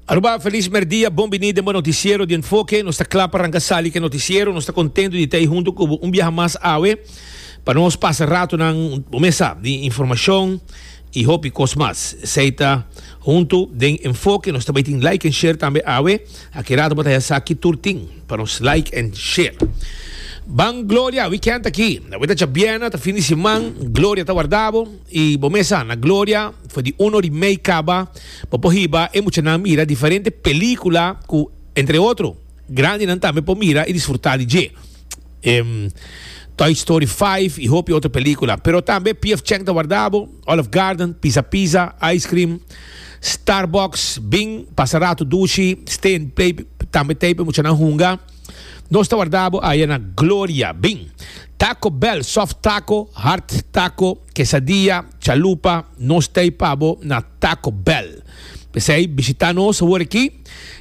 Aruba, feliz merdia, bon bini den bo noticiero di Enfoke. Nos ta kla pa ranka sali ke noticiero. Nos ta kontento di ta ei hunto ku bo un biaha mas awe pa nos pasa ratonan bo mesa di informashon i hopi kos mas. Esei ta hunto den Enfoke. Nos ta bai tin like en share tambe awe. Aki rato bo ta ya sa ki tur tin pa nos like en share. Ban Gloria, wikènt aki. Awor ta djabièrna, ta fin di siman. Gloria ta warda bo. I bo mesa na Gloria for di uno di mei caba bo por hiba e muchanan mira diferente pelicula cu entre otro grandinan tambe por mira y disfruta di dje. Ehm Toy Story Five y hopi otro pelicula. Pero tambe PF Chang ta warda bo, Olive Garden, Pizza Pizza, Ice Cream, Starbucks, Bing, pasa rato dushi, Stay and Play tambe ta e muchanan hunga. Nos ta warda bo aya na gloria. Bin, Taco Bell, soft taco, hard taco, quesadilla, chalupa, nos t'ey pa bo na Taco Bell. P'esey, bishita nos awor aki.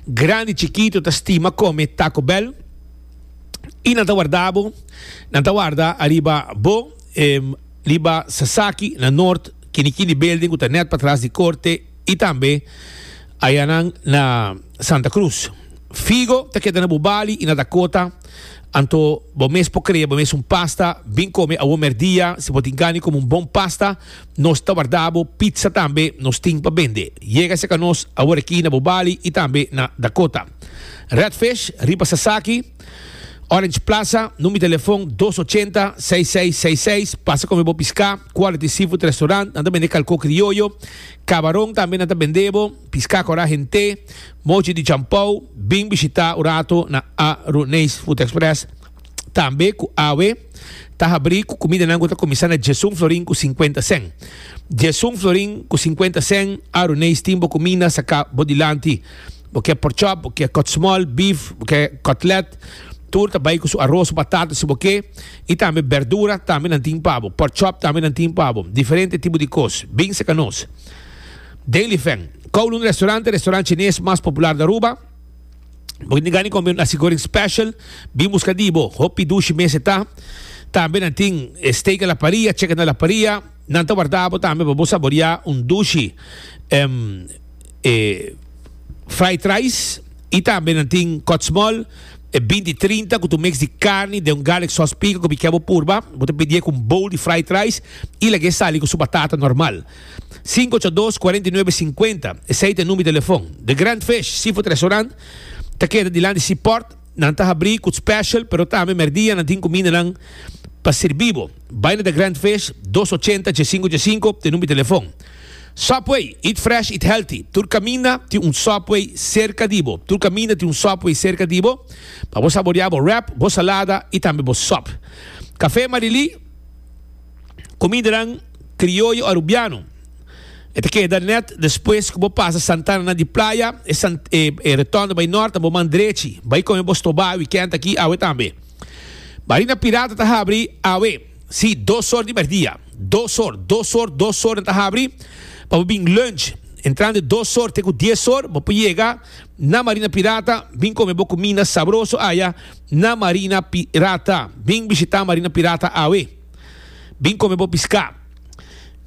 Grandi, chikito ta stima come Taco Bell y nan ta warda bo. Nan ta warda ariba bo, riba Sasaki na Noord, kini kini building cu ta net patras di Corte. I tambe ayanan na Santa Cruz. Figo ta keda na bo bali i na Dakota, anto bo mes por krea bo mes un pasta. Bin kome awor merdia si bo tin gani kome un bon pasta. Nos ta warda bo pizza tambe nos tin pa bende. Yega serka nos awor aki na bo bali i tambe na Dakota. Redfish, riba sasaki. Orange Plaza, num di telefon dos ochenta, seis seis seis seis. Pasa kome bo piská, Quality Seafood Restaurant, nan ta bende kalkó krioyo, kabaron tambe nan ta bende bo, piská korá hent'é, mochi di champou, bin bishitá un rato na Aruneis Food Express tambe ku awe ta habrí ku kumidanan ku ta kuminsá na djes un florin ku sinkuenta sèn. Djes un florin ku sinkuenta sèn, Aruneis tin bo kuminda saká bo dilanti. Bo ke pork chop, bo ke kotsmol, beef, bo ke kotlet, tur ta bai ku su aros, su batata, si bo ke, i tambe bèrdura tambe nan tin pa bo, pork chop tambe nan tin pa bo, diferente tipo di kos, bin serka nos. Dailyfan, Kowloon Restaurante, restaurant chines mas popular di Aruba. Bo ke gani kome un nasi goreng special, bin buska di bo, hopi dushi mes e ta. Tambe nan tin steak a la paria, chicken a la paria. Nan ta warda bo tambe pa bo saboreá un dushi èm e fried rice i tambe nan tin kòtsmòl e binti trinta ku ta un mix di karni den un garlic sòs pika ku mi kè bo purba. Bo ta pidié ku un bowl di fried rice i laga e sali ku su batata normal. Sinku ocho dos, kuarenta i nuebe, sinkuenta, esei ta e number di telefòn. The Grand Fish Seafood Restaurant ta keda dilanti Seaport. Nan ta habrí cu special, pero tambe merdia nan tin cumindanan pa sirbi bo. Bai na The Grand Fish, dos ochenta dje sinku dje sinku, t'e number di telefon. Subway, eat fresh, eat healthy. Tur caminda tin un Subway cerca di bo. Tur caminda tin un Subway cerca di bo pa bo saborea bo wrap, bo salada y tambe bo sub. Café Marilí, cumindanan crioyo Arubiano. E ta keda nèt despues ku bo pasa Santana na di playa, e retònde bai nòrt na bo man drechi. Bai kon e bo stobá wikènt akí awe tambe. Marina Pirata ta habri awe, sí, dos or di mèrdia. Dos or, dos or, dos or nan ta habri pa bo bin lùnch. Entrando e dos or te ku dies or bo por yega na Marina Pirata bin kome bo kuminda sabroso aya na Marina Pirata. Bin bishitá Marina Pirata awe. Bin come bo pisca.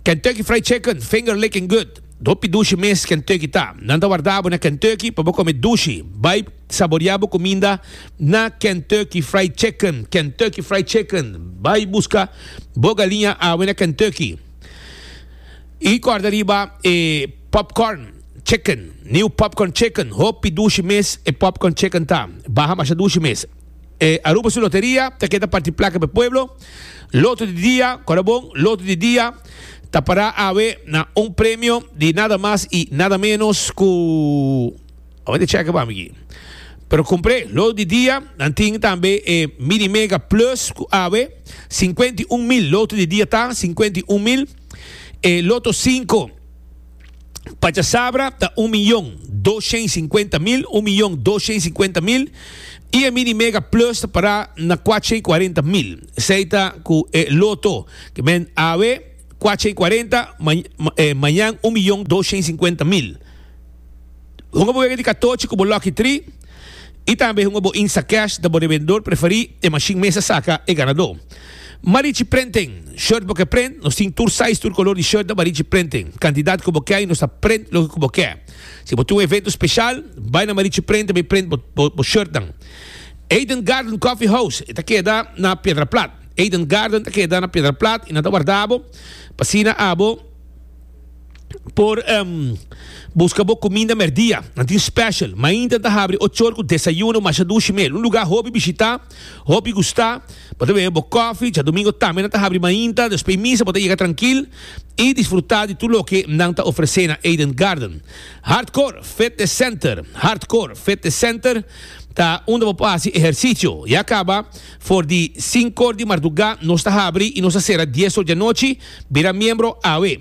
Kentucky Fried Chicken, finger licking good. Hopi dushi mes Kentucky ta. Nan ta warda bo na Kentucky pa bo come dushi. Bai saboria bo cuminda na Kentucky Fried Chicken. Kentucky Fried Chicken, bai busca bo galiña awe na Kentucky. Y corda riba e popcorn chicken, new popcorn chicken. Hopi dushi mes e popcorn chicken ta. Baha masha dushi mes. E Aruba su loteria ta keda parti plaka p'e pueblo. Loto di dia, kora bon, loto di dia ta para awe na un premio di nada mas y nada menos cu, a wende cheke pa mi aki. Pero compre loto di dia, nan tin tambe e Mini Mega Plus cu awe cincuenta y un mil loto di dia ta, cincuenta y un mil. E loto cinco. Pachasabra ta un miyon doshen sinkuenta mil, un miyon doshen sinkuenta mil, i e Mini Mega Plus ta pará na kuatshen kuarenta mil. Esei ta ku e Loto, ke men awe kuatshen kuarenta, mañan un miyon doshen sinkuenta mil. Honga bo wega di katochi ku bo lòkitri? I tambe hunga bo Instacash ta bo revendor preferí, e mashin mester saka e ganadó. Marichi Printing, Shirt bo ke print, nos tin tur size, tur kolor di shirt na Marichi Printing. Kantidat ku bo ke i nos ta print loke ku bo ke. Si bo tin un evento spesial, bai na Marichi Print ta bai print bo bo shirtnan. Eden Garden Coffee House, e ta keda na Piedraplat. Eden Garden ta keda na Piedraplat i nan ta warda bo, pa asina abo. por buska bo kuminda mèrdia. Nan tin spèshal. Mainta ta habri ochor ku desayuno, masha dushi mel. Un lugá hopi bishitá, hopi gustá. Bo ta bebe bo kòfi. Djadumingo tambe nan ta habri mainta. Despui misa bo ta yega trankil i disfrutá di tur loke nan ta ofresé na Eden Garden. Hardcore Fitness Center Hardcore Fitness Center ta unda bo por hasi ehersisio. Ya kaba. For di sinkor di mardugá nos ta habri i nos ta sera dies or dianochi. Bira miembro awe.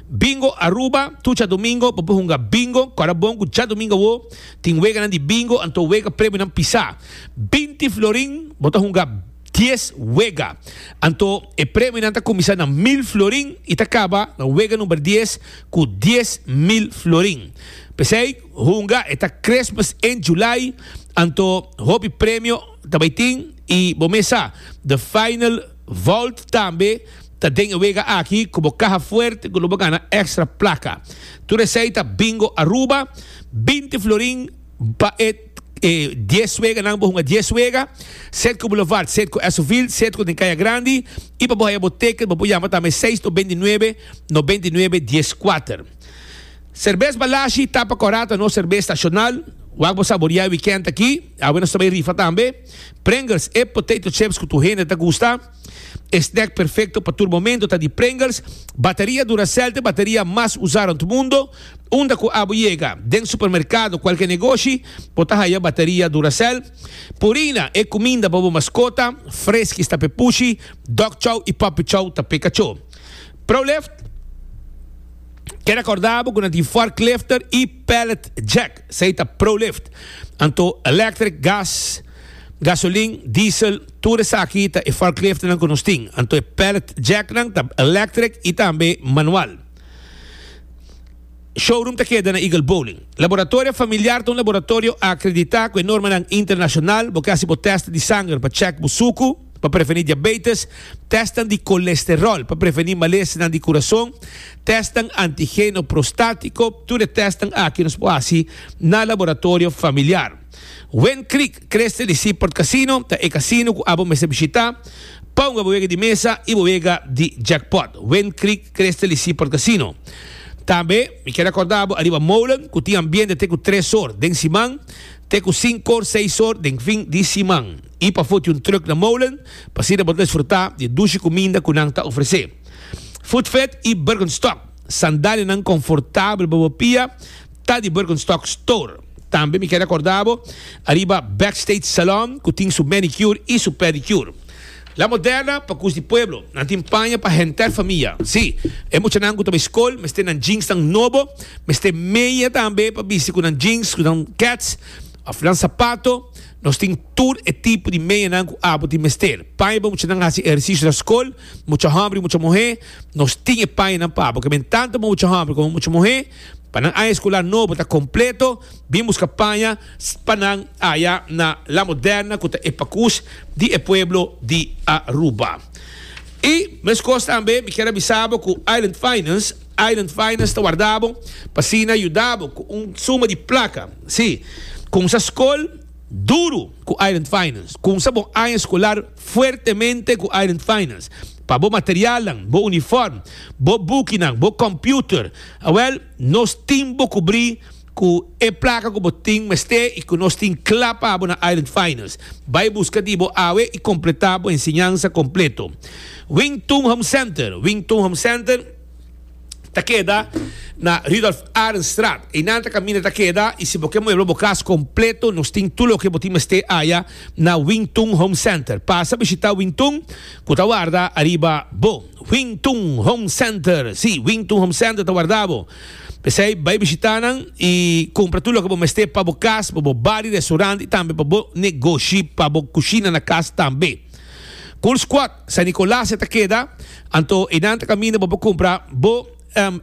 Bingo Aruba, Tur djadumingo bo por hunga bingo. Kòrda bon ku djadumingo awó tin weganan di bingo, anto wega premionan pisá. Binti florin bo ta hunga dies wega. Anto e premionan ta kuminsá na mil florin i ta kaba na wega number dies ku dies mil florin. P'esei hunga e ta Christmas in July, anto hopi premio. Ta bai tin, y bo mes sa, the final vault tambe ta den e wega aki cu bo caha fuerte cu lo bo gana extra placa. Tur esey ta Bingo Aruba, binti florin pa e e dies weganan bo hunga dies wega, set cu Boulevard, set cu Esoville, set cu den Caya Grandi, y pa bo haya bo ticket bo por yama tambe seis no benti nuebe no benti nuebe dies kuater. Serbes Balashi, Tapa Corata, nos serbes nacional, wak bo saboria e weekend aki. Awe nos ta bai rifa tambe Pringles, e potato chips cu tur hende ta gusta. E snack perfecto pa tur momento ta di Pringles. Bateria Duracell ta e bateria mas usa rond mundo. Unda cu abo yega, den supermercado o cualke negoshi, bo ta haya bateria Duracell. Purina, e cuminda pa bo mascota. Friskies ta p'e pushi, Dog Chow y Puppy Chow ta p'e cacho. Prolift, Keda corda bo cu nan tin forklifter y pallet jack. Esei ta pro-lift. Anto electric, gas, gasolin, diesel, tur esaki ta e forkliftnan ku nos tin. Anto e pallet jacknan ta electric i tambe manual. Showroom ta keda na Eagle Bowling. Laboratorio Familiar ta un laboratorio akreditá ku e normanan internashonal. Bo ke hasi bo tèst di sanger pa chèk bo suku. pa prevení diabetes, tèstnan di kolesteròl pa prevení malesenan di kurason, tèstnan antigeno prostátiko, tur e tèstnan aki nos por hasi na laboratorio familiar. Win Creek Creste di Seaport Casino ta e kasino ku abo mester bishitá pa hunga bo wega di mesa i bo wega di jackpot. Win Creek Creste di Seaport Casino. Tambe mi kier akordá bo ariba Molen ku tin ambiente te ku tres or den siman te ku sinku or seis or den fin di siman. i pa foti un truk na molen pa asina bo ta disfrutá di e dushi kuminda ku nan ta ofresé. Foodfed i Birkenstock, sandalianan konfortabel pa bo pia ta di Birkenstock Store. Tambe mi kere akorda bo ariba Backstage Salon ku tin su manicure i su pedicure. La Moderna pa kus di pueblo, nan tin paña pa henter famia. Sí, e muchanan ku ta bai skol mester nan jeansnan nobo, mester meya tambe pa bisti ku nan jeans, ku nan kets òf nan sapato. Nos tin tur e tipo di medianan cu abo tin mester. Paña pa muchanan haci ehercicio na scol, mucha homber y mucha muher. Nos tin e pañanan pa abo. Keben tanto pa mucha homber como mucha muher. Pa nan aña escolar nobo ta completo, bin busca paña pa nan aya na La Moderna cu ta e pacus di e pueblo di Aruba. Y mescos tambe mi kier a bisa bo cu Island Finance, Island Finance ta warda bo pa asina yuda bo cu un suma di placa. Si, cumsa scol duro cu Island Finance. Cumsa bo aña scolar fuertemente cu Island Finance. Pa bo materialnan, bo uniform, bo boekinan, bo computer. Awel, nos tin bo cubri. Cu e placa cu bo tin mester y cu nos tin cla pa bo na Island Finals. Bay busca di bo awe y completa bo enseñanza completo. Wington Home Center, Wington Home Center ta keda na Rudolph Arendstraat. Eynan ta caminda ta keda y si bo ke muebla bo cas completo nos tin tur loke bo tin mester aya na Wington Home Center. Pasa bishita Wington cu ta warda ariba bo. Wington Home Center, si, Wington Home Center ta warda bo. P'esei, bai bishitá nan i kumpra tur loke bo mester pa bo kas, pa bo bar di restaurant i tambe pa bo negoshi, pa bo kushina na kas tambe. Coors Quad, San Nicolas e ta keda, anto einan ta kaminda bo por kumpra bo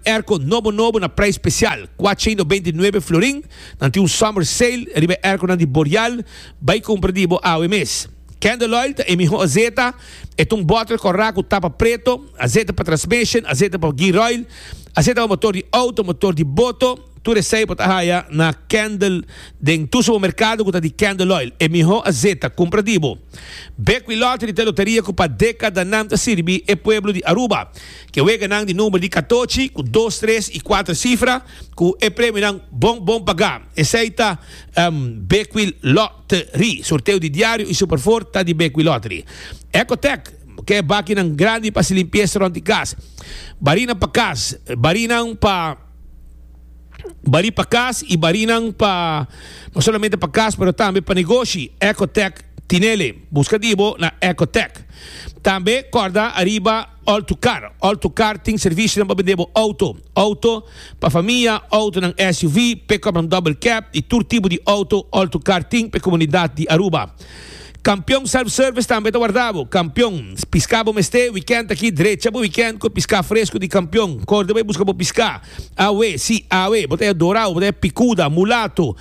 airco nobo nobo na prijs special, kuatsha i nobenta i nuebe florin. Nan tin un summer sale riba e airconan di Boreal, bai kumpra di bo awe mes. Candle Oil ta e miho azeta E ta un bòtel kòrá ku tapa preto, aseite pa transmishon, aseite pa gearoil, aseite pa motor di outo, motor di boto. Tur esei bo ta haya na Kendall den tur supermerkado ku ta di Kendall Oil. E mihó aseite a kumpra di bo. Bek wi lottery ta e loteria ku pa dekadanan ta sirbi e pueblo di Aruba. Ke weganan di number di katochi ku dos, tres i kuater sifra ku e premionan bon bon pagá. Esei ta Bek wi. Lottery, sorteo di diario y super four ta di Bequi Lottery. Ecotec, ke bakinan grandi pa haci limpieza rond di cas. Barinan pa cas, barinan pa bari pa cas y barinan pa no solamente pa cas pero tambe pa negoshi. Ecotec tinele. Busca di bo na Ecotec. Tambe corda ariba. Altocar, Altocar tin servisionan pa bende bo auto, auto pa famia, autonan SUV, pick-upnan double cab y tur tipo di auto Altocar tin p'e comunidad di Aruba. Campeon Self Service tambe ta warda bo Campeon, pisca bo mester weekend aki drecha bo weekend cu e pisca fresco di Campeon, corde bo e busca bo pisca, awe si awe bo ta ya dorao, bo ta ya picuda, mulato,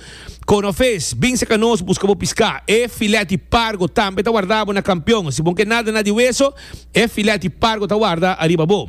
cono vis, bin seca nos busca bo pisca. E filet y pargo tambe ta warda bo na Campeon, si bo no ke nada nada di weso, E filèt di pargo ta warda ariba bo.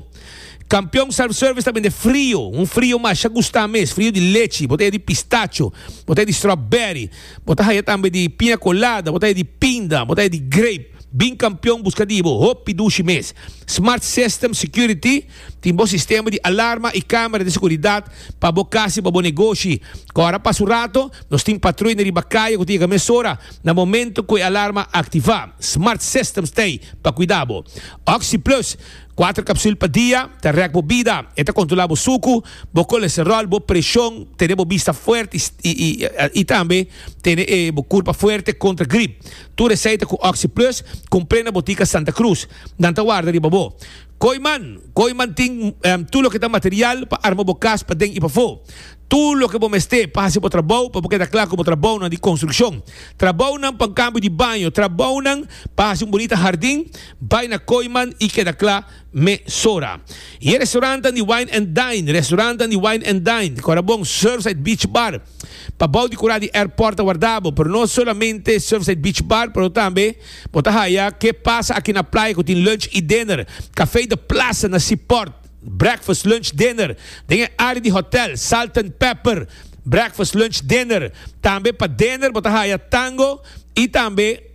Kampion Self Service ta bende frio, un frio masha gustá mes, frio di lechi, bo ta haya di pistacho, bo ta haya di strawberry, bo ta haya tambe di piña colada, bo ta haya di pinda, bo ta haya di grape. Bin Kampion buska di bo, hopi dushi mes. Smart System Security. Tin bo sistema di alarma i kamera di seguridat pa bo kas i pa bo negoshi. Kòr a pasa un rato, nos tin patruynan riba kaya ku ta yega mesora na momentu ku e alarma a aktivá. Smart Systems ta ei pa kuidá bo. Oxi Plus, kuater kapsul pa dia, ta rèk bo bida. E ta kontrolá bo suku, bo kolesteròl, bo preshon, tene bo bista fuerte i tambe tene e bo kurpa fuerte kontra grip. Tur e seita ku Oxi Plus kumpré na botika Santa Cruz. Nan ta warda riba bo. Koiman, Koiman tin tur loke ta material pa arma bo kas paden i pafó. Tur loke bo mester pa hasi bo trabou pa bo keda kla ku bo trabounan di konstrukshon, trabounan pa un kambio di baño, trabounan pa hasi un bunita hardin, bai na Koiman i keda kla mesora. I e restorantan di Wine and Dine, Restorantan di Wine and Dine, Corabon, Surfside Beach Bar, Pa bou di kurá di airport ta wardá bo, pero no solamente Surfside Beach Bar, pero tambe bo ta haya Ke Pasa Aki Na Playa ku tin lunch i dinner, Café de Plaza na Seaport, breakfast, lunch, dinner, den e área di hòtel, Salt and Pepper, breakfast, lunch, dinner, tambe pa dinner bo ta haya tango i tambe.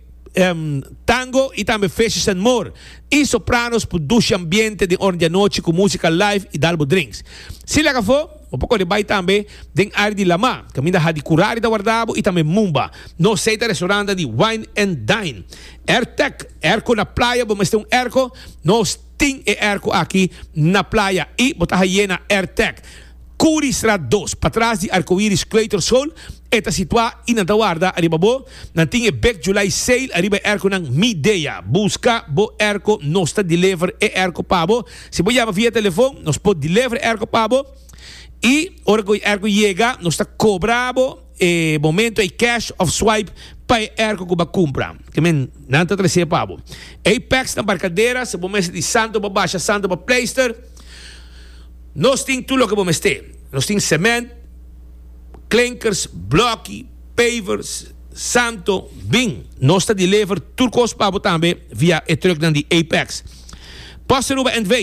tango y tambe Fishes and More y sopranos por dushi ambiente den ora di anochi cu musica live y dal bo drinks. Si lek afo, bo por cori bay tambe den area di Lamá, caminda Hadi Curari ta warda bo y tambe Mumba. Nos seis ta restaurant ta di Wine and Dine. Airtec, Airco na playa, bo mester un airco? Nos tin e airco aki na playa y bo ta hayé na Airtec. Curi straat dos, patras di Arcoiris Creator Soul. E ta situá i nan ta warda ariba bo. Nan tin e Big July Sale ariba e erkonan Midea. Buska bo erko, nos ta deliver e erko pa bo. Si bo yama via telefon, nos por deliver e erko pa bo. I ora cu e erko yega, nos ta cobra bo e momento ey cash of swipe pa e erko cu bo a cumpra. Te men, nan ta trece pa bo. Ey packs na barcadera, si bo mester di santo pa basha, santo pa pleister, nos tin tur loke bo mester. Nos tin cement. klinkers, blòki, pavers, santo, bin. Nos ta deliver tur kos pa bo tambe via e truknan di Apex. Post Aruba NV.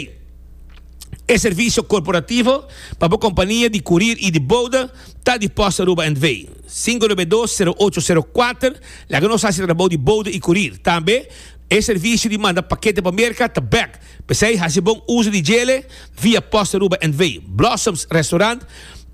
E servisio korporativo pa bo kompania di kurir i di bouda ta di Post Aruba NV. Sinku nove dos sero ocho sero kuater laga nos hasi trabou di bouda i kurir. Tambe e servisio di manda pakete pa Merka ta bèk. P'esei hasi bon uso di djele via post Aruba NV. Blossoms Restaurant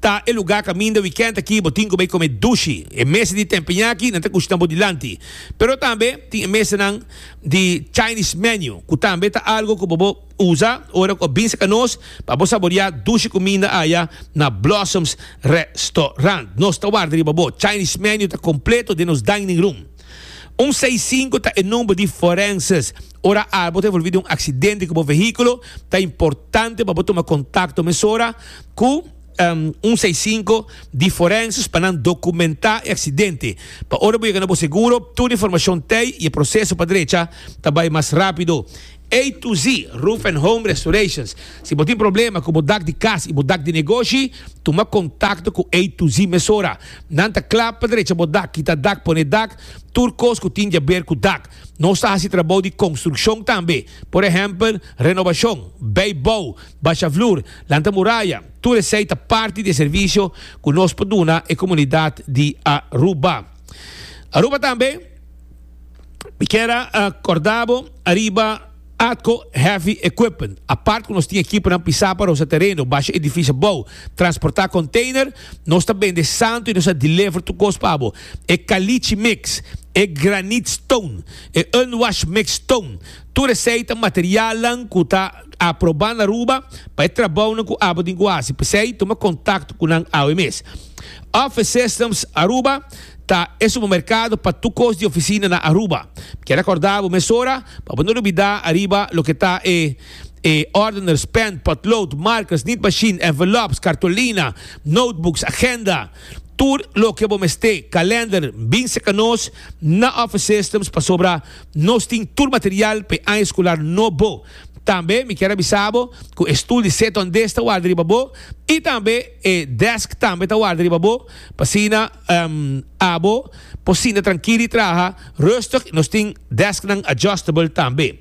ta e lugar kaminda wikènt aki bo tin ku bai kome dushi. E mesa di tempeñaki nan ta kushina bo dilanti. Pero tambe tin e mesanan di Chinese menu ku tambe ta algu ku bo por usa ora ku a binse ka nos pa bo saboreá dushi kuminda aya na Blossoms Restaurant. Nos ta warda riba bo. Chinese menu ta kompleto den nos dining room. Un seis sinku ta e number di forenses. Ora albo ta envolvi den un aksidente ku bo vehíkulo, ta importante pa bo tuma kontakto mesora ku un seis sinku di forenses pa nan dokumentá e aksidente. Pa ora bo yega na bo seguro, tur informashon t'ei i e proseso pa drecha ta bai mas rápido. A to Z, Roof and Home Restorations. Si bo tin problema ku bo dak di kas i bo dak di negoshi, tuma kontakto ku A to Z mesora. Nan ta kla pa drecha bo dak, kita dak, pone dak, tur kos ku tin diaber ku dak. Nos ta hasi trabou di konstrukshon tambe, por ehèmpel, renobashon, bei bou, basha flur, lanta muraya, tur esei ta parti di e servisio ku nos por duna e komunidat di Aruba. Aruba tambe. Mi kier a korda bo ariba Atco Heavy Equipment. Apart ku nos tin ekiponan pisá pa rosa tereno, basha edifisio bou, transportá konteiner, nos ta bende santu i nos a deliver tur kos pa bo. E kalichi mix, e granit stone, e unwashed mix stone, tur esei ta materialnan ku ta aprobá na Aruba pa e trabounan ku abo tin ku hasi. P'esei, tuma kontakto ku nan awe mes. Office Systems Aruba ta e supermerkado pa tur kos di ofisina na Aruba. Mi kier rekòrdá bo mesora pa bo no lubidá ariba loke ta e e ordeners, pèn, potlood, markers, nit machine, envelops, kartolina, notebooks, agenda, tur loke bo mester, kalender. Bin serka nos na Office Systems pasobra nos tin tur material pa e aña eskular nobo. Tambe mi kier a bisa bo ku e stul di seta on des ta warda riba bo i tambe. E desk tambe ta warda riba bo, p'asina abo por sinta trankil i traha rustig. Nos tin desknan adjustable tambe.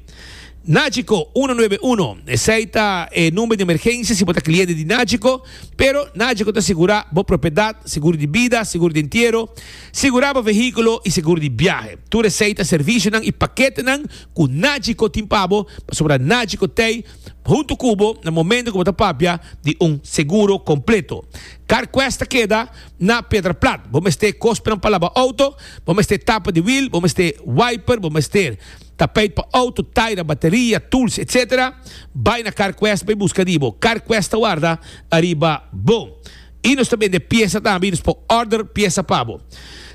Nagico uno nuebe uno, esei ta e number di emergensia si bo ta kliente di Nagico. Pero Nagico ta sigurá bo propiedat, seguro di bida, seguro di entiero, sigurá bo vehíkulo i seguro di biahe. Tur esei ta servisionan i paketenan ku Nagico tin pa bo, pasobra Nagico t'ei. huntu ku bo na momento ku bo ta papia di un seguro kompleto. Carquest ta keda na Pedra Plat. Bo mester kospenan pa laba outo, bo mester tapa di wiel, bo mester wiper, bo mester tapeit pa outo, taira, bateria, tools, etc. Bai na Carquest bai buska di bo. Carquest ta warda ariba bo. Y nos ta bende piesa tambe y nos por order piesa pa bo.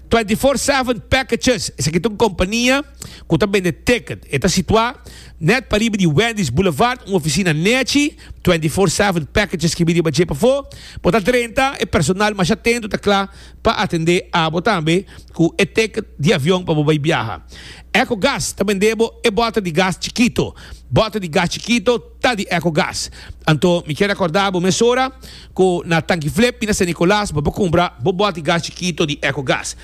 Twenty Four Seven Packages, esaki ta un compania cu ta bende ticket. E ta situa net pariba di Wendy's Boulevard, un oficina nechi. Twenty Four Seven Packages kibi riba dje pafo. Bo ta drenta, e personal mas atento ta cla pa atende abo tambe cu e ticket di avion pa bo bay biaha. Ecogas ta bende bo e bota di gas chikito. Bota di gas chikito. ta di eco gas. Anto mi kier recorda bo mesora cu na Tanki Flip y na San Nicolas bo por cumpra bo bot di gas chikito di eco gas.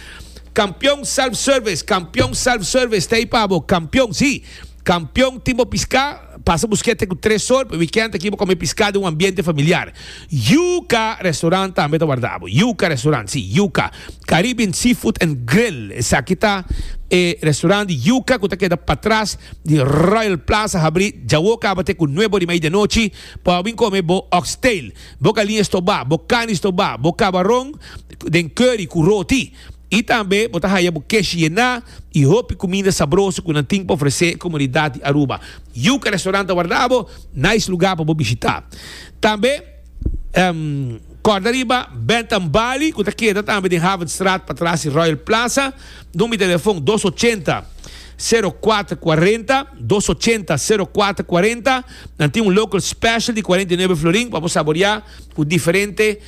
Campeon Self Service, Campeon Self Service ta ahí pa bo, Campeon si, Campeon tin bo pisca pasa busque te cu tres sor pa weekend aki bo come pisca den un ambiente familiar. Yuca Restaurant tambe ta warda bo, Yuca Restaurant si, Yuca. Caribbean Seafood and Grill, esaki ta e restaurant di yuca cu ta keda patras di Royal Plaza, habri djawo caba te cu nuebe ori mei den nochi pa bo bin come bo oxtail, bo calia estoba, bo carne estoba, bo cabaron den curry cu roti y tambe bo ta haya bo kesh yena y hopi cuminda sabroso cu nan tin pa ofrece e comunidad di Aruba. Yuca Restaurant ta warda bo nice lugar pa bo bishita. Tambe. Kòrda riba Bed and Bali ku ta keda tambe den Havenstraat patras di Royal Plaza. Number di telefon dos ochenta, sero kuater kuarenta, dos ochenta, sero kuater kuarenta. Nan tin un local special di kuarenta i nuebe florin pa bo saboreá ku diferente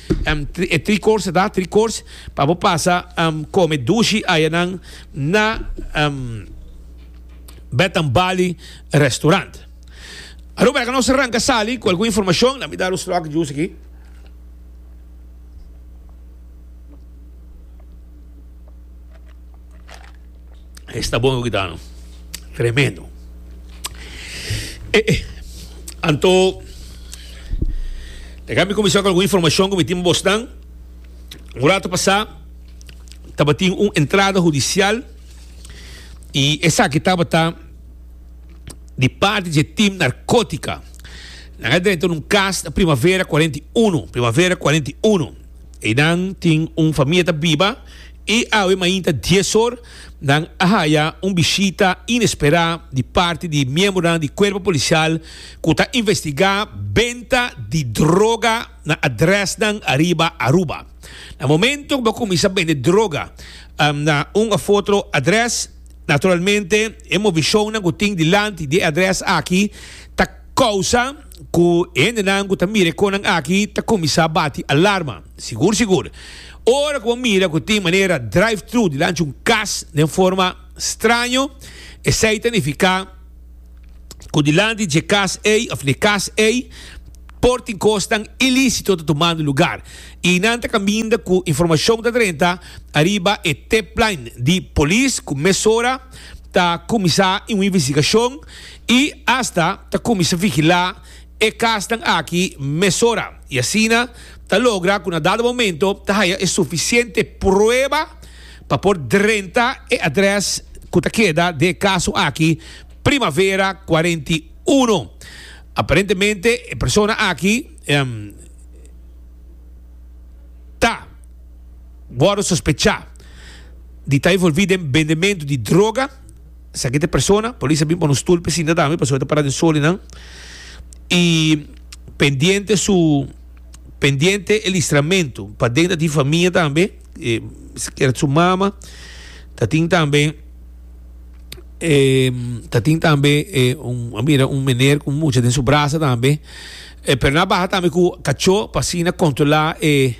e tri course ta, tri course, pa bo pasa kome dushi ayanan na Bed and Bali restaurant. Aruba e ka nos ranka sali ku algun informashon, lami dar un stròk jus aki. Esta bon kita no. Tremendo. Eh, eh. Anto, déjame comenzar con alguna información que me tiene Boston. Un rato pasado, estaba una entrada judicial y esa que estaba di parti dje tim narkotika. Nan a drenta un kas na Primavera 41, Primavera 41. Einan tin un famia ta biba i awe mainta dies or nan a haya un bishita inesperá di parti di miembronan di Kuerpo Polisial ku ta investigá benta di droga na adrèsnan ariba Aruba. Na momentu ku bo a kuminsá bende droga na un òf otro adrès, Naturalmente, e movishonnan ku tin dilanti di e adrès aki ta kousa ku e hendenan ku ta mira e konan aki ta kuminsá bati alarma. Sigur sigur, ora ku bo mira ku tin manera drive-thru dilanti un kas den forma straño, esei ta nifiká, cu dilanti dje cas ey of n'e cas ey por tin cosnan ilicito ta tumando lugar y nan ta caminda cu informacion ta drenta ariba e tipline di Polis cu mesora ta cuminsa un investigacion y hasta ta cuminsa vigila e casnan aki mesora y asina ta logra cu na dado momento ta haya e suficiente prueba Pa por drenta e adres cu ta keda den e caso aki, Primavera cuarenta y uno. Aparentemente e persona aki ta wordo sospecha di ta involvi den bendemento di droga. Esaki ta e persona. Polis a bin pone un stoel pisinta tambe pasobra e ta para den solinan. Y pendiente su, pendiente e listramento paden ta di famia tambe. sikier su mama ta tin tambe ta tin tambe a mira un mener ku mucha den su brasa tambe pero nan a baha tambe ku kacho pa asina kontrola e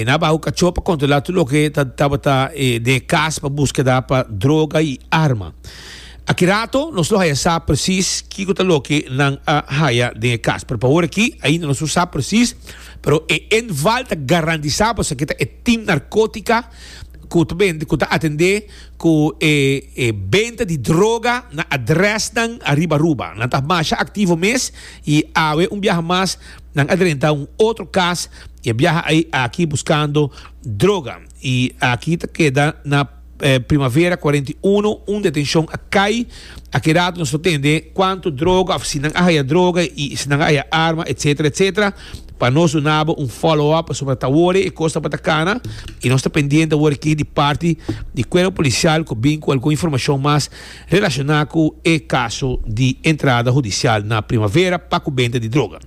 nan a baha ku kacho pa kontrola tur loke ta tabata den e kas pa buskeda pa droga i arma aki rato nos lo haya sa presis kiko ta loke nan a haya den e kas pero pa ora aki ainda nos no sa presis. Pero e inval ta garantisá pa esaki ta e tim narkótika ku ta bende, ku ta atendé ku e e benta di droga na adrèsnan ariba Aruba. Nan ta masha aktivo mes i awe un biaha mas nan a drenta un otro kas i a biaha ei aki buskando droga. I aki ta keda na Primavera kuarenta i unu un detenshon a kai. Akedat nos no tende kuantu droga òf si nan a haya droga i si nan a haya arma etsetera etsetera pa nos duna bo un follow up pasobra ta wòrdu e kos tabata kana i nos ta pendiente awor aki di parti di kuerpo polisial ku bin ku algun informashon mas relashoná ku e kaso di entrada hudisial na Primavera pa ku benta di droga.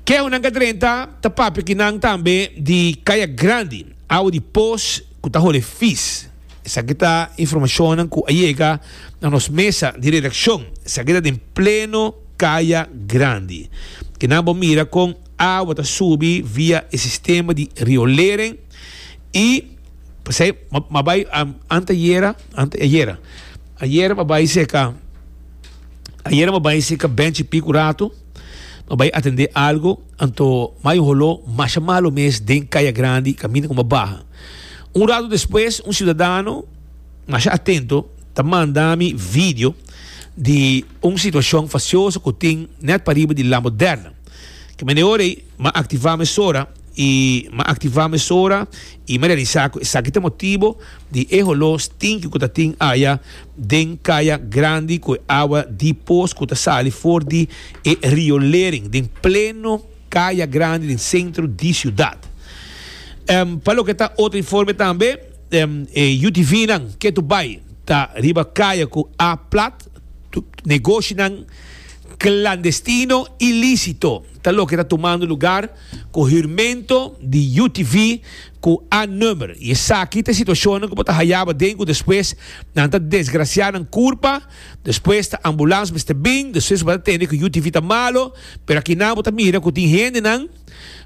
Ke awor nan ka drenta ta papia ki nan tambe di kaya grandi, awa di pos ku ta hole fis. Esaki ta informashonnan ku a yega na nos mesa di redakshon. Esaki ta den pleno kaya grandi. Ke nan bo mira kon awa ta subi via e sistema di riolering i pasei m'a bai anteayera, ante ayera, ayera m'a bai seka, ayera m'a bai seka bènchi piku ratu. No bai atendé algo, anto mai un holó masha malu mes den Kaya Grandi kaminda ku bo baha. Un ratu despues un siudadano masha atento ta manda mi video di un situashon fasioso ku tin nèt pariba di La Moderna. Kende ora ei. M'a activá mesora i m'a activá mesora i m'a realisá cu esaki ta motibo di e holó stinki cu ta tin aya den caya grandi cu e awa di pos cu ta sali for di e riolering den pleno caya grandi den centro di ciudad. Pa loke ta otro informe tambe e UTVnan ketu bay ta riba caya cu A plat. Negoshinan klandestino i lísito ta loke ta tumando lugar ku hurmento di UTV ku A-nummer i esaki ta e situashonnan ku bo ta hayaba den ku despues nan ta desgrasiá nan kurpa, despues ta ambulans mester bin, despues bo ta tende ku UTV ta malu, pero akinan bo ta mira ku tin hendenan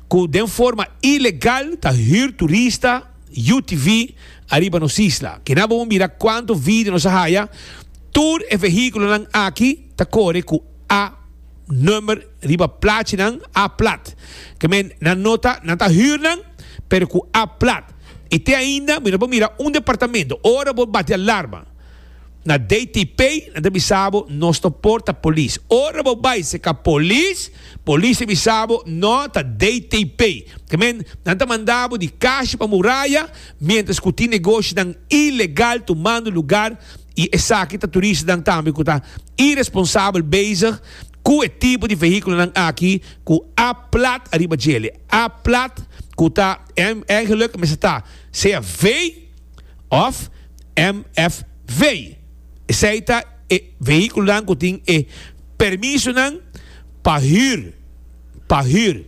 ku den forma ilegal ta hür turista. UTV ariba nos isla. Kina bo un mira kuantu video nos a haya, tur e vehiculonan aki ta kore ku A number riba plachinan, A plat. Ke men nan no ta, nan ta hür nan, pero ku A plat. Y te ainda mi no por mira un departamento, ora bo bati alarma. Na DTP nan ta bisa bo nos no por ta polis. Ora bo bai si e ka polis, polis ta bisa bo no ta DTP. Ta men nan ta manda bo di kashi pa muraya mientras ku tin negoshinan ilegal tumando lugar i esaki ta turistanan tambe ku ta iresponsabel bezig ku e tipo di vehiculonan aki ku a plat ariba djele. A plat ku ta, en eigenlijk mester ta sea V. òf MFV. Esei ta e vehíkulonan ku tin e permisonan pa hür, pa hür.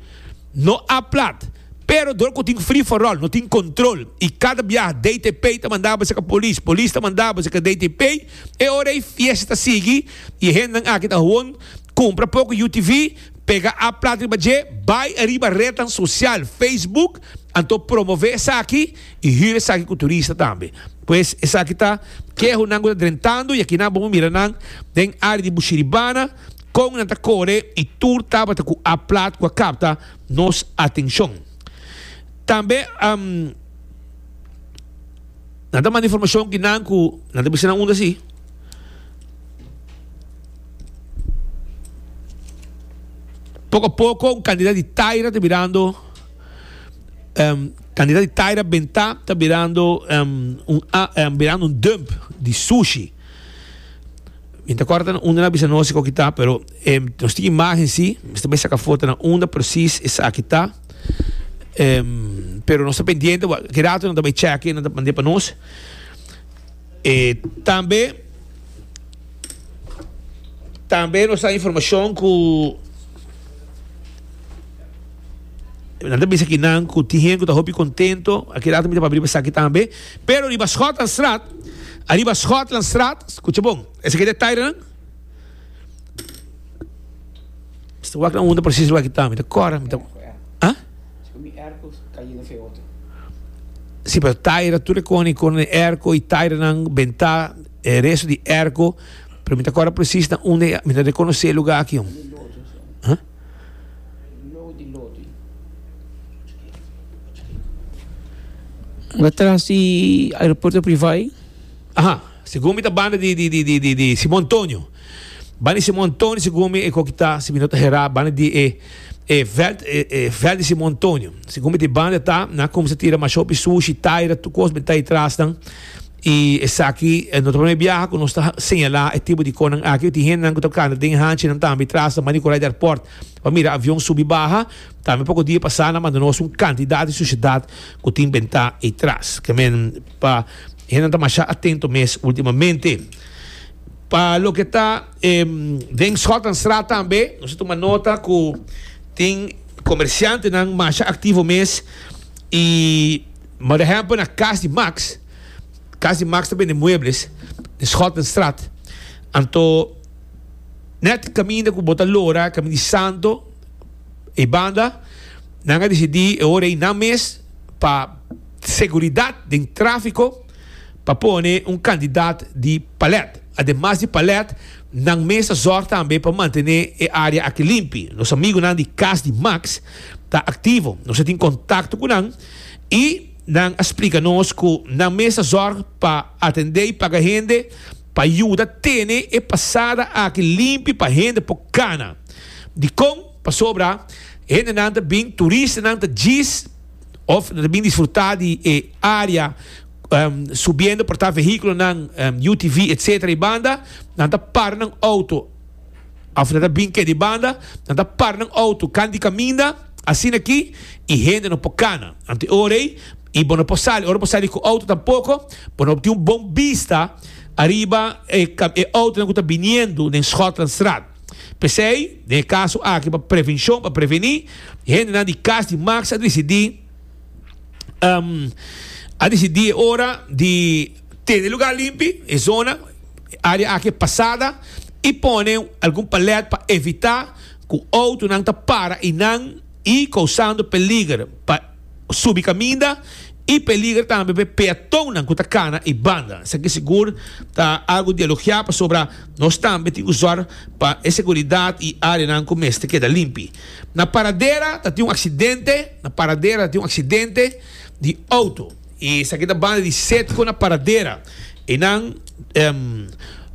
No a plat, pero dor ku tin free for all, no tin kontrol i kada biaha DTP ta manda bo seka polis, polis ta manda bo seka DTP. E ora ei fiesta ta sigui i e hendenan aki ta hon. Cumpra poco UTV, pega app plata riba dje, bay ariba rednan social, Facebook, anto promove esaki y hür esaki cu turista tambe. Pues esaki ta kehonan cu ta drentando y aki nan bo por mira nan den area di Bushiribana con nan ta core y tur tabata cu app plat cu a capta nos atencion. Tambe um nan ta manda informacion ki nan cu nan ta bisa nan unda si. Poko a poko un kandidat di Taira ta birando em, kandidat di Taira Bentá ta birando em, un a, em, birando un dump di sushi. Mi ta korta na unda na bisa nos ko kita, pero em, nos tin imagen si, mi ta bai saka foto na unda presis esaki ta. Em, pero nos ta pendiente, wa, ki rato nan ta bai cheki nan ta mand'é pa nos. E tambe tambe nos a informacion cu nan ta bisa ki nan cu tin hen cu ta hopi contento a keda ta mira pa briba esaki tambe pero riba Schotlandstraat ariba Schotlandstraat scucha bon esaki e detailenan mi ta wak na unda precies lugar ki ta mi ta cora mi ta ah. Si, pero taira tur e koni kor na e erko i tairanan bentá e resto di e erko, pero mi ta kòrda presis na unda i mi ta rekonosé e lugá aki. Unda tras di aeropuerto privá ei? Aha, segun mi ta banda di Simon Tonio. Ban di Simon Tonio sigumi e kokita sibi no ta hera banda di e e veld e veld di Simon Tonio sigumi di banda ta na kumsa tira masho pi sushi taira tur kos beta itrasnan i esaki no ta prome biaha ku nos ta señala e tipo di konan aki tin hendenan ku ta kanta den hanchinan tambe trasnan banda di Korai di Airport pa mira avion subi baha tambe poko dia pasá nan manda nos un kantidat di sushidat ku tin benta itras ke men pa hendenan ta masha atento mes ultimamente. Pa loke ta den Schotanstraat tambe nos a tuma nota cu tin comerciantenan masha activo mes y Mari ehempel na Cas di Max, Cas di Max ta bende muebles den Schotanstraat anto net caminda cu bo ta lora caminda di Santo e banda nan a decidi e ora ey nan mes pa seguridad den trafico. pa pone un kandidat di palèt. Ademas di palèt, nan mes ta zòrg tambe pa mantené e área aki limpi. Nos amigunan di Kas di Max ta aktivo, nos a tin kontakto ku nan i nan a splika nos ku nan mes ta zòrg pa atendé i paga hende pa yuda tene e pasada aki limpi pa hende por kana. Dikon? Pasobra hendenan ta bin, turistanan ta djis. of nan ta bin disfruta di e area subiendo por ta vehiculonan UTV etcetera di banda nan ta para nan auto of nan ta bin ke di banda nan ta para nan auto kant di caminda asina aki y hende no por cana anto e ora ey y bo no por sali ora bo sali cu auto tampoco bo no tin un bon bista ariba e auto nan cu ta biniendo den Schotlandstraat. P'esei, den e kaso aki pa prevenshon, pa prevení, e hendenan di Kas di Maks a disidí, a disidí e ora di tene lugá limpi, e zona, e área aki e pasada, i pone algun palèt pa evitá ku outonan ta para einan i kousando peliger pa. subi kaminda i peliger tambe pa e peatonnan ku ta kana e banda. Esaki sigur ta algu di elogiá pasobra nos tambe tin ku sòr pa e seguridat i áreanan ku mester keda limpi. Na Paradera ta tin un aksidente, Na Paradera ta tin un aksidente di outo. I esaki ta banda di Setco na Paradera. E nan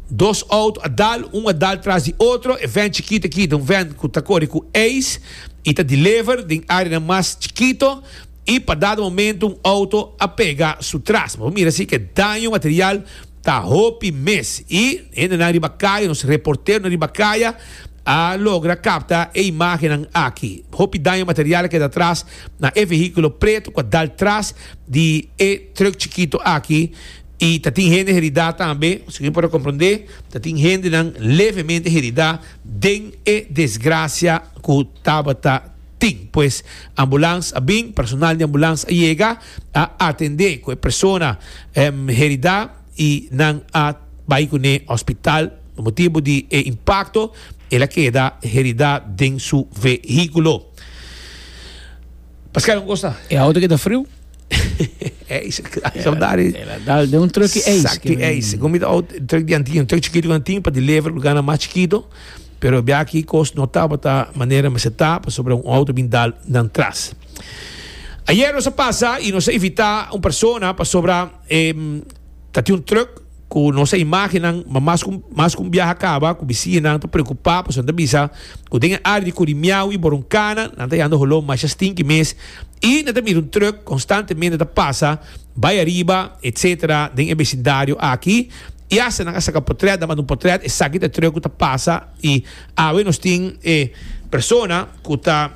dos auto a dal, un a dal tras di otro. E vèn chikito aki ta un vèn ku ta kore ku Ace i ta deliver den áreanan mas chikito i pa dado momentu un auto a pega su tras. Bo mira si ku e daño material ta hopi mes i hendenan riba kaya, nos reporteronan riba kaya a logra kapta e imágennan aki. Hopi daño material a keda atras na e vehiculo preto cu a dal tras di e truck chikito aki y ta tin hende herida tambe, segun por a comprende ta tin hendenan levemente herida den e desgracia cu tabata tin. Pues ambulance a bin, personal di ambulance a yega, a atende cu e persona herida y nan a bay cu ne hospital, motibo di e impacto el a keda herida den su vehiculo. Paska un cosa. E auto que ta frio. Eis, saudade. Ela dá de um truck eis. Exacto, eis. Como de auto, truck de antigo, truck chiquito que antigo para deliver lugar na mais chiquito. Pero bia aqui cos não tá bota maneira mas tá para sobre um auto bem dal dan tras. Ayer nós passa e nós evita um persona para sobra eh, tá um truck Ku nos a imágen nan, ma mas ku mas ku un biaha kaba ku bisiñunan ta preokupá pasobra nan ta bisa ku den e área di kuri miau i boronkana nan ta yanda holó masha stinki mes i nan ta mira un trùk konstantemente ta pasa bai ariba etsetera den e besindario aki i asta nan a saka potrèt nan manda un potrèt esaki ta e trùk ku ta pasa i awe nos tin e persona ku ta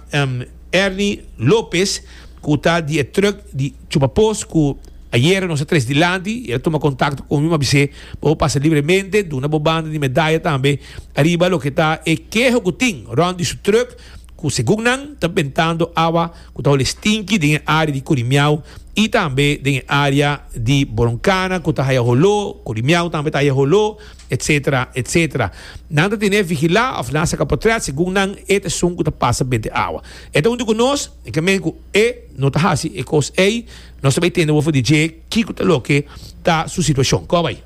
Erni Lopez ku ta di e trùk di Chupa pos ku ayera nos a tres dilanti i el a tuma kontakto ku mi, mi a bis'é, Bo pasa libremente, duna bo banda di medaya tambe ariba loke ta e keho ku tin rònt di su trùk ku segun nan ta bentando awa ku ta holi stinki den e área di Kurimiau i tambe den e área di Boroncana ku ta haya holó, Kurimiau tambe ta haya holó, etsetera, etsetera. Nan ta ten'é vigilá òf nan a saka potrèt segun nan e ta esun ku ta pasa bende awa. E ta huntu ku nos, e ka men ku. E no ta hasi e kos ei. Nos ta bai tende bo for di dje kiko ta loke ta su situashon. Kòb ei.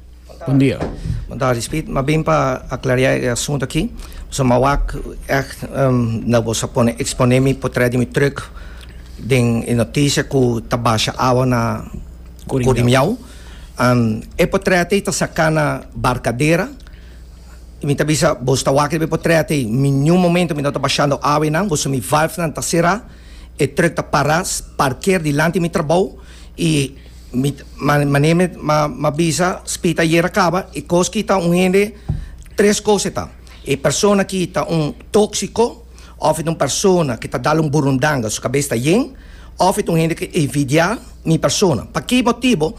Bon dia. Bon tarde Speed. M'a bin pa aklariá e asuntu aki. Pasobra m'a wak ègt unda boso a pone eksponé mi potrèt di mi trùk den e notisie ku ta basha awa na Kurimiaw. E potrèt ei ta saká na Barkadera. I mi ta bisa boso ta wak riba e potrèt ei. Niun momentu mi no ta bashando awa ei nan. Boso mi valfnan ta será. E truk ta para parker dilanti mi trabou y mi mane mi a bisa spit ayer a caba y cos ki ta un hende tres cos eta e persona ki ta un toxico of eta un persona ki ta dal un burundanga su cabes ta yen of eta un hende ki envidia mi persona paki motibo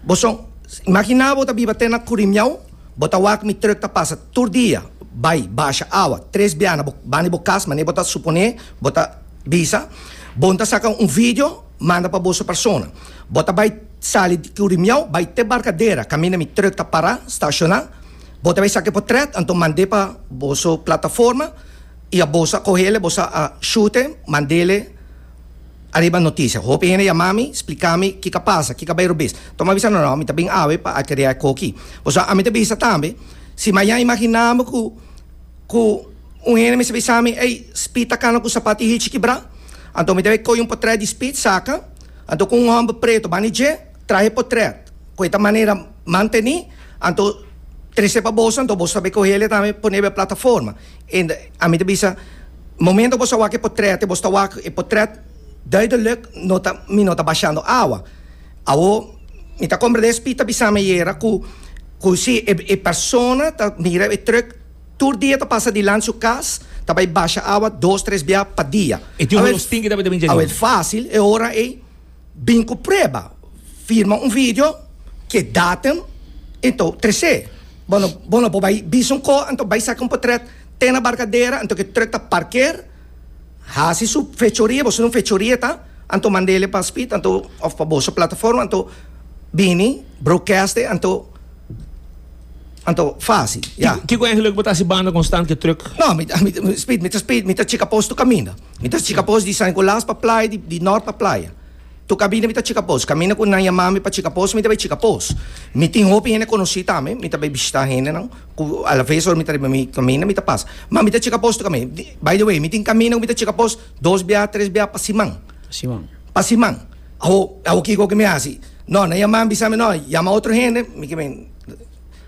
bo son imagina bo ta biba te na curimiao bo ta wak mi truk ta pasa tur dia bay basha awa tres biana bo bani bo cas mane bo ta supone. Bo ta bisa, Bon ta saka un video, manda pa boso persona. Bo ta bai sali di Curimiao bai te Barcadera, kaminda mi truck ta pará, stashoná. Bo ta bai saka e potret, anto mand'é pa boso plataforma i a boso a kohéle, boso a shut'é, mandéle ariba notisia. Hopi hende yamá mi, splika mi kiko a pasa, kiko a bai robes. Tò mi a bisa, No, mi ta bin awe pa akeria e koki. Pasobra ami ta bisa tambe, si mañan imaginábo ku. Ku un hende mester bisa mi, Ey, Speed ta kana ku sapat di Hitchie kibrá. Anto mi debe koyo un potrèt di Speed, saka. Anto ku un hòmber pretu bani dje, traha e potrèt. Ku e ta manera mantené, anto trese pa boso, anto boso ta be kohe el e tambe pon'é be plataforma. En ami ta bisa, Momento ku boso a wak e potrèt, boso ta wak e potrèt duidelùk, no ta, mi no ta bashando awa. Awo mi ta komprendé, Speed ta bisa mi ayera ku, ku sí, e, e persona ta mira e trùk. Tur dia ta pasa dilant su kas, ta bai basha awa dos tres bia pa dia. E tin holos tin ki ta bai ta bin djador. Awet fásil e ora ei bin ku prueba, firma un video, ke datum, anto tres'é. Bo no bo no por bai bisa un kos, anto bai saka un potrèt te na barkadera, anto ke truk ta parker, hasi su fechoria, bo sino fechoria ta, anto mand'ele pa Speed, anto òf pa boso plataforma, anto bini broadcast'e, anto. Anto, fásil, ya. Kiko e geluk bo ta hasi banda kon stand ke truck? No, mi ta, mi ta speed, mi ta speed, mi ta chika pos tur kaminda. Mi ta chika pos di San Nicolas pa playa, di, di Nort pa playa. Tur kabinda mi ta chika pos. Kaminda ku nan yama mi pa chika pos, mi ta bai chika pos. Mi tin hopi hende konosí tambe, mi ta bai bishitá hendenan ku alaves ora mi ta riba mi kaminda mi ta pasa. Ma mi ta chika pos tur kaminda. Di, by the way, mi tin kaminda ku mi ta chika pos dos bia, tres bia pa siman. Pa siman. Pa siman. Awo, awo kiko ke mi hasi? No, nan yama mi bisa mi, no, yama otro hende, mi ke men.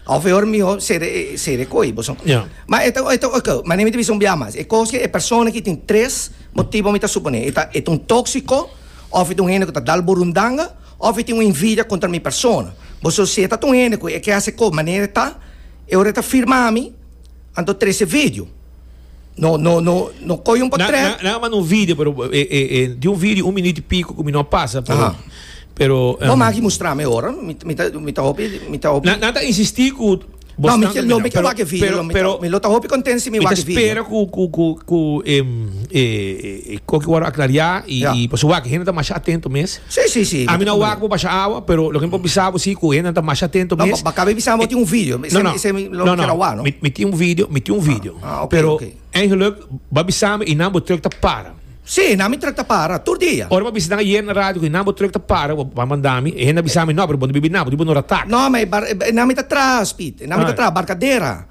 Of e ora miho sere e sere koe boso. Ja. Ma e ta e ta ok, ma nemi te bisa un bia mas. E kos ke e persona ki tin tres motibo mi ta supone. E ta e ta un tóksiko, of e ta un hende ku ta dal burundanga, of e tin un invidia kontra mi persona. Boso si e ta un hende ku e ke hasi kos manera e ta, e ora e ta firma mi, Anto trece video. No no no no coy un portret. Na, na, na manda un video, pero eh, eh, eh, di un video un minuto y pico que mi no pasa, pero. Aha. Pero. Um, no, magi mostrame ahora. Mi, mi, ta, mi ta hopi, mi ta hopi. Na, na ta insistí cu. No, mi, no, mi pero, wak video. Pero, pero, mi lo ta hopi content si mi wak video. Mi ta espera cu, cu, cu, cu, em, eh, Koki wòrdu aklariá i pasobra wak hende ta masha atentu mes. Ami no a wak bo basha awa, pero loke mi por bisa bo si ku hendenan ta masha atentu mes. No, mi bisa bo tin un video, mi tin un video, mi tin un video, pero eingeluk bo a bisa mi i nan bo truk ta para. Si, nan mi truk ta para tur dia. Ora bo a bisa nan ayer na radio ku i nan bo truk ta para, bo a manda mi, e hende a bisa mi, no, pero bo no bibi nan, bo ta bibi un ratak. No, mi ta traha speed, mi ta traha barkadera.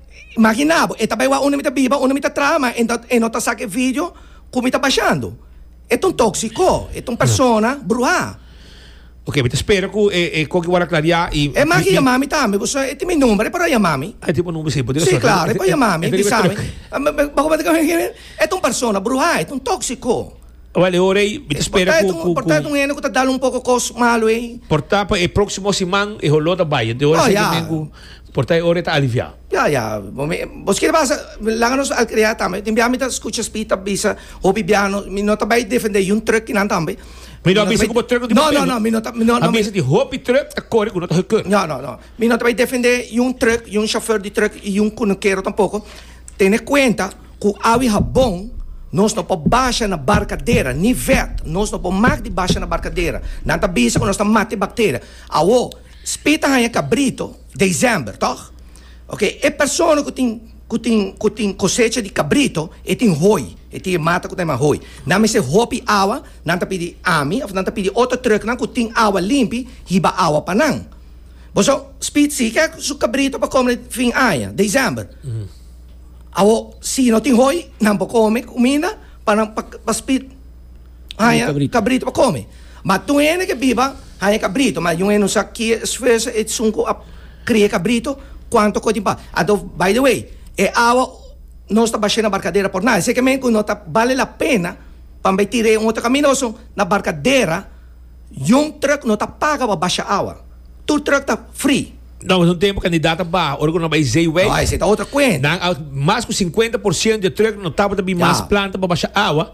Imagina bo, e ta bai wak unda mi ta biba, unda mi ta traha, ma e no ta saka e vidio ku mi ta bashando. E ta un tóksiko, e ta un persona bruhá. Oke, mi ta spera ku e koki wòrdu aklariá i. E maki yama mi tambe, ku e tin mi number, e por a yama mi. E tin bo number si, bo tin resòrti. Si, klaru, e por yama mi, bisa mi. Bo kual tabata ki hende? E ta un persona bruhá, e ta un tóksiko. Wèl, e ora ei mi ta spera ku, ku. Por ta e ta un hende ku ta dal un poko kos malu ei. Por ta pa e próksimo siman e holó ta bai, enton e ora esei ta biba ku. Por ta e ora e ta aliviá. Ya, ya. Bos kier basa langa nos al krea tambe. Tin bia mi ta skucha Speed ta bisa hopi bia no, mi no ta bai defendé yun trùk kinan tambe. Mi no a bisa ku bo trùk no tin papel no. Mi a bisa di hopi trùk ta kore ku no ta hukeur. No, no, no. Mi no ta bai defendé yun trùk, yun shofèr di trùk i yun kunukero tampoko. Tene kuenta ku awe habon nos no por basha na barkadera, ni vèt. Nos no por mak di basha na barkadera. Nan ta bisa ku nos ta mati bakteria. Awo. Spit a haña kabrito desèmber, tòg? Oke, e persona ku tin, ku tin, ku tin kosecha di kabrito, e tin hoi, e tin e mata ku ta yama hoi. Nan mester hopi awa, nan ta pidi ami òf nan ta pidi otro trùknan ku tin awa limpi hiba awa pa nan. Bo sa, Spit si ke su kabrito pa kome fin aña, desèmber. Awo, si no tin hoi, nan por kome kuminda pa nan, pa, pa Spit. haya cabrito pa come. Ma tur hende ke biba haya cabrito, ma yun'e no sa kie esfuerso e sun cu a crie cabrito, cuanto cotin pa. Anto, by the way, e awa no sta bashe na barcadera por nada. Esey ke men cu no ta bale la pena pa bay tira e un otro camino oso na barcadera, yun truck no ta paga pa basha awa. Tur truck ta free. No, mas un tempo cantidad ta baha ora cu no bay esey wei. No, esey ta otro cuenta. Nan a mas cu cincuenta por ciento di e truck no tabata bin mas planta pa basha awa.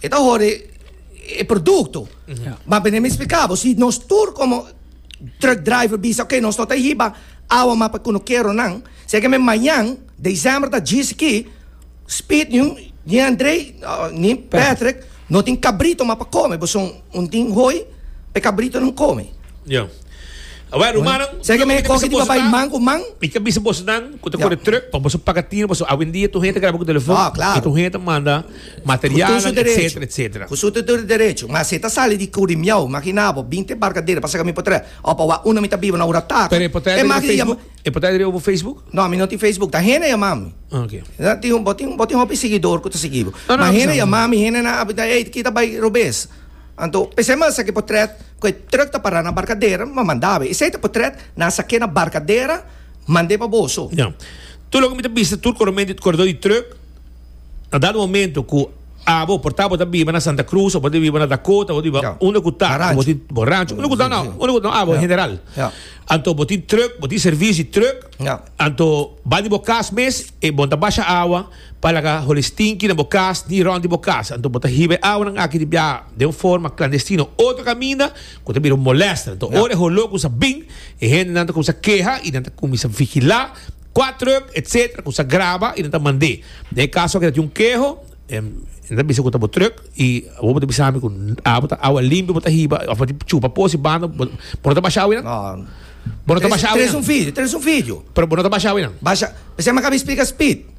E ta hori e produkto. Ma bene mi splikabo, si nos tur komo truck driver bisa, ok, nos no ta hiba awa mas pa kunukero nan, seke mi mañan, december ta djis aki, Speed ni ni Andrei, ni Patrick no tin kabrito mas pa kome, bo son un tin hoi pa e kabritonan kome. Ya. Awor, rumannan, Seke mi koki di papay man ku man. Mi ta bisa bosnan ku ta kore truck, pa boso paga tin, boso awendia tur hende ta graba ku telefòn, i tur hende ta manda. materialnan, etcetera, etcetera. Cu su tudu derecho. Ma si e ta sali di Curi Miau, magi na bo, bin te Barcadero pa sa cami por trae, o pa wak uno mi ta biba na ura taca, Pero e por trae e magi yama. E por trae riba bo Facebook? No, ami no tin Facebook, ta hende yama mi. Ah, ok. Bo tin, bo tin, bo tin hopi siguidor cu ta sigui bo. No, no, Ma no hende pasa yama nada. mi, hende na a bita, ey, kita bay Robes. Anto, p'esey mester sa ke por trae, cu e truck ta para na Barcadero, m'a manda bay. Esey ta por trae, nan a sa ke na Barcadero, mand'e pa boso. Ya. Tur loke mi ta bista tur coromen di, corredor di truck, na dado momento cu abo por ta bo ta biba na Santa Cruz o bo ta biba na Dakota o bo ta biba yeah. unda cu ta na rancho, tin, bo rancho. Mm, unda cu ta no, unda cu ta no abo yeah. general yeah. anto bo tin truck bo tin servicio di truck yeah. anto ba di bo cas mes e bo ta basha agua pa laga holi stinky na bo cas ni rond di bo cas anto bo ta hibe agua nan aki di bia de un forma clandestino otro caminda cu ta bira molesta anto yeah. ora holo cu sa bin e hende nan ta comisa queha y nan ta comisa vigila Kua truck etc ku sa graba y nan ta mand'é. Na e kaso ke ta tin un keho nan ta bisa ku ta bo truck y abo bo ta bisa mi ku abo ta awa limpio bo ta hiba of bo ta chupa po si banda bo no ta basha awe nan? Bo no ta basha awe nan? Pero bo no ta basha awe nan? Basha p'esei mi a kabi splika Speed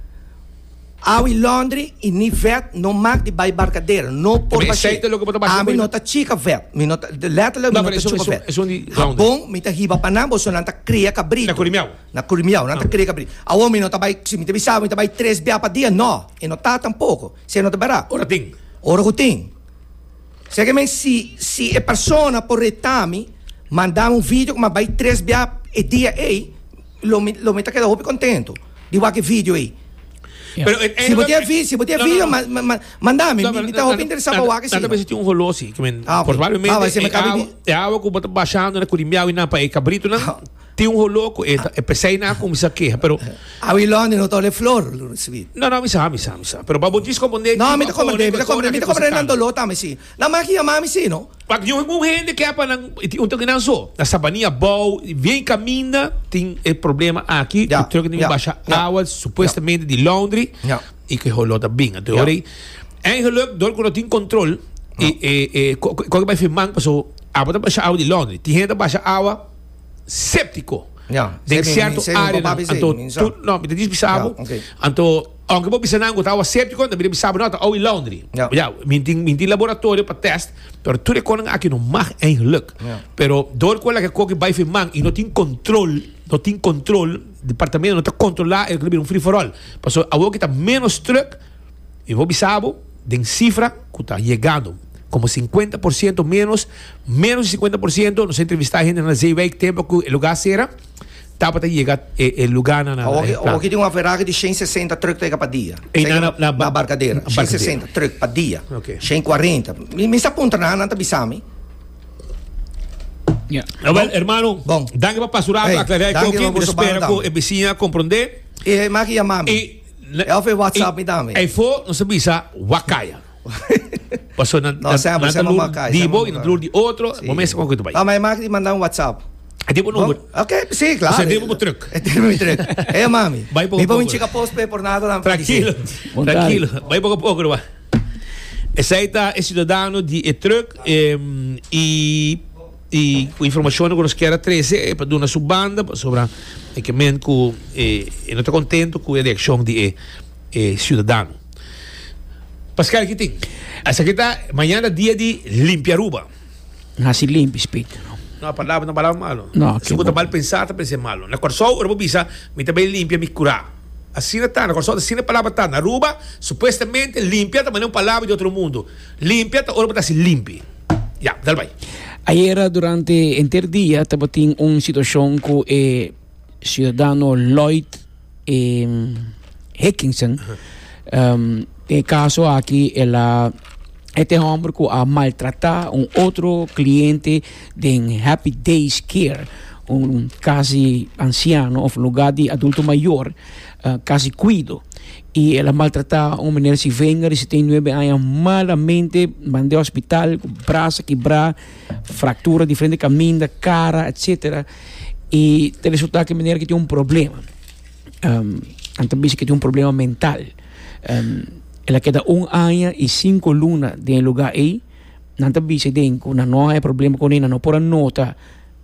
awe londri y ni vèt no mak di bai barkadera no por bash'é ami no ta chika vèt mi no ta letterlijk mi no ta chupa vèt habon mi ta hiba pa nan boso nan ta kria kabrito. Na Curimeao nan ta kere kabri, Awo mi no ta bai, si mi ta bisaba mi ta bai tres bia pa dia, no, e no ta tampoko, si e no ta bera. Ora tin. Ora ku tin. Seki men si si e persona por retami, mandami un video ku mi a bai tres bia e dia ei, lo mi lo mi ta keda hopi kontentu di wak e video ei. Pero si bo tin e vi si bo tin e video ma ma ma mandami, mi mi ta hopi interesá pa wak e Nan ta sila. mester tin un holosi, ke men, Ah, ok. probablemente Awa, si mi e kabe awa di- e awa ku bo ta bashando na Curimeao i nan pa e kabritu nan, Tin un holoco eta, e pesey nan a cuminsa keha, pero. Awi Lonnie no ta ole flor, lo recibi. No, no, mi sa, mi sa, mi sa. Pero pa bo disco bo negi. No, mi ta comprende, mi ta comprende, mi ta comprende nan dolor tambe si. Nan maki yama mi si, no? Pak di un hende ke apa nan, tin un toki nan so, na Sabania bou, bien caminda, tin e problema aki, Ya, cu truck tin ya, basha ya. awa, supuestamente di laundry, Ya. y cu e holo ta binga. Te Ya. hoor, en geluk, door cu no tin control, e, e, e, co, co, co, bay firman, paso, apa ta basha awa di laundry. Tin hende ta basha awa, séptiko den sierto áreanan. Anto, tur, no, mi ta dici bisa bo, anto, aunke bo bisa nan ku tabatin séptiko, mi ta bisa bo, no, ta owi londri. Ya, mi tin, mi tin laboratorio pa tèst, pero tur e konan aki no mag eigelijk. Pero dor ku ela'ke koki bai fin man i no tin kòntròl, no tin kòntròl, departamento no ta kontrolá, el ta bira un free for all. Pasobra awoki ta ménos trùk. Mi por bisa bo den sifra ku ta yegando, komo sinkuenta por siento ménos, ménos di sinkuenta por siento, nos a entrevistá hendenan na Zeewijk tempo ku e lugá sera, tabata yega e e lugánan na Awor ki, awor ki tin un aferaje di shen sesenta trùk ta yega pa dia. Esei na na na Barkadera. Shen Barkadera. sesenta trùk pa dia. Ok. Shen kuarenta. Mi mi sa puntra nan, nan ta bisa mi. Ya. Nou wel, hermano, Bon. danki pa pasurá, Hey, pa aklará e danki, koki. Mi ta hermano, spera ku banda. e bisiña a komprondé. E man ki yama mi. I Ey fo e WhatsApp mi tambe. Ey fo nos a bisa wakaya. Paso nan ta lur di bo y nan ta lur di otro. Bo mester con cu ta bay. No, ma e maki di manda un WhatsApp. E tin bo number. Ok, si, claro. Paso e tin bo bo truck. E tin bo mi truck. Ey mami. Bay poco poco. Mi pa winchi ka postpaid por nada tampoco. Tranquilo, tranquilo. Bay poco poco no bay. Esey ta e ciudadano di e truck y. Y cu informacionnan cu nos kier a trece e pa duna su banda pasobra e ke men cu e no ta contento cu e reaccion di e ciudadano. Pascal ki tin? Esaki ta mañana dia di limpi Aruba. No hasi limpi spitio no. No a palabra no palabra malo. No, Esnan cu ta mal pensa ta pensa e malo. Na Corsou ora bo bisa mi ta bay limpia mi cura. Asina ta, na Corsou asina e palabra ta. Na Aruba supuestamente limpia ta mane un palabra di otro mundo. Limpia ta ora bo ta hasi limpi. Ya, dal bai. Ayera durante henter dia tabatin un situacion cu e ciudadano Lloyd Hickinson. E caso aki el a e ta e homber cu a maltrata un otro cliente den Happy Days Care, un casa di anciano of lugar di adulto mayor, casa di cuido. y el a maltrata un meneer si venga di setenta y nueve aña malamente mande hospital cu brazo kibra fractura diferente caminda cara etcetera y ta resulta cu meneer aki tin un problema um nan ta bisa cu e tin un problema mental um el a keda un aña y cinco luna den e lugar ey nan ta bisa den cu nan no haya problema con e nan no por a nota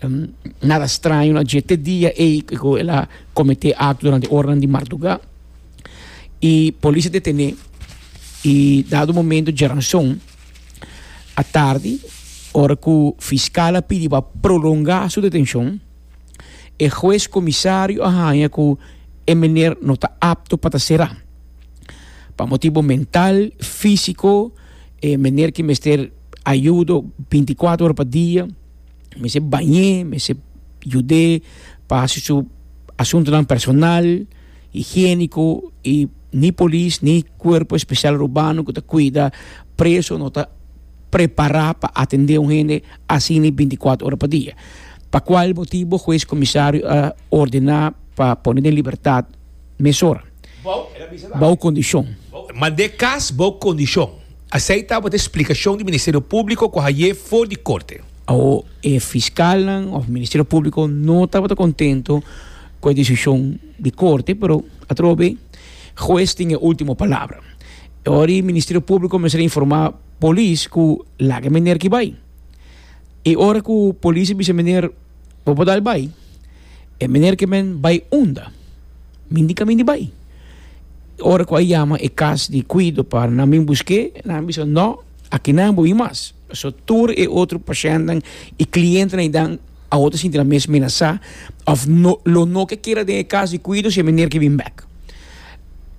um nada straño na dje te dia ey cu el a comete acto durante e oranan di marduga. y polis a detene y dado momento djeranson atardi ora cu fiscal a pidi pa prolonga su detencion e huez comisario a haña cu e meneer no ta apto pa ta cera pa motibo mental, fisico e meneer ki mester ayudo binti cuatro ora pa dia mester bañe mester yude pa haci su asuntonan personal. higiéniko i ni polis ni Kuerpo Espesial Urbano ku ta kuida preso no ta prepará pa atendé un hende asina binti kuater ora pa dia. Pa kual motibu Hues Komisario a ordená pa pone den libertat mesora bou kondishon. Mand'é kas bou kondishon. Asei tabata e splikashon di Ministerio Públiko ku haié for di korte. Awo e fiskalnan òf Ministerio Públiko no tabata kontentu cu e decision di corte pero atrobe huez tin e ultimo palabra y ora e Ministerio Publico mester a informa polis cu laga e meneer aki bay y ora cu polis a bisa meneer bo por dal bay e meneer ke men bay unda mi di caminda bay ora cu a yama e cas di cuido pa nan bin busque nan a bisa no aki nan a bin mas so tur e otro pashentnan y clientenan a. Awor ta sinti nan mes menasá òf no lo no ke keda den e kas di kuido si e meneer ke bin bèk.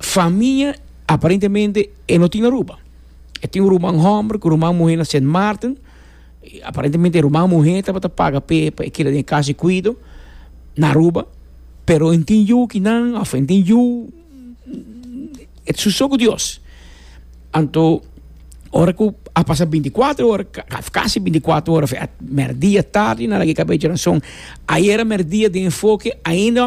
Famia aparentemente e no tin Aruba. E tin un ruman hòmber ku ruman muhé na Sint Maarten. Aparentemente e ruman muhé tabata paga p'e pa e keda den e kas di kuido na Aruba, pero e tin yu kinan òf e tin yu. su so ku Dios. Anto ora ku a pasa binti kuater ora, kasi binti kuater ora, mèrdia tardi, nan a gei kabia di orason. Ayera mèrdia den enfoke ainda.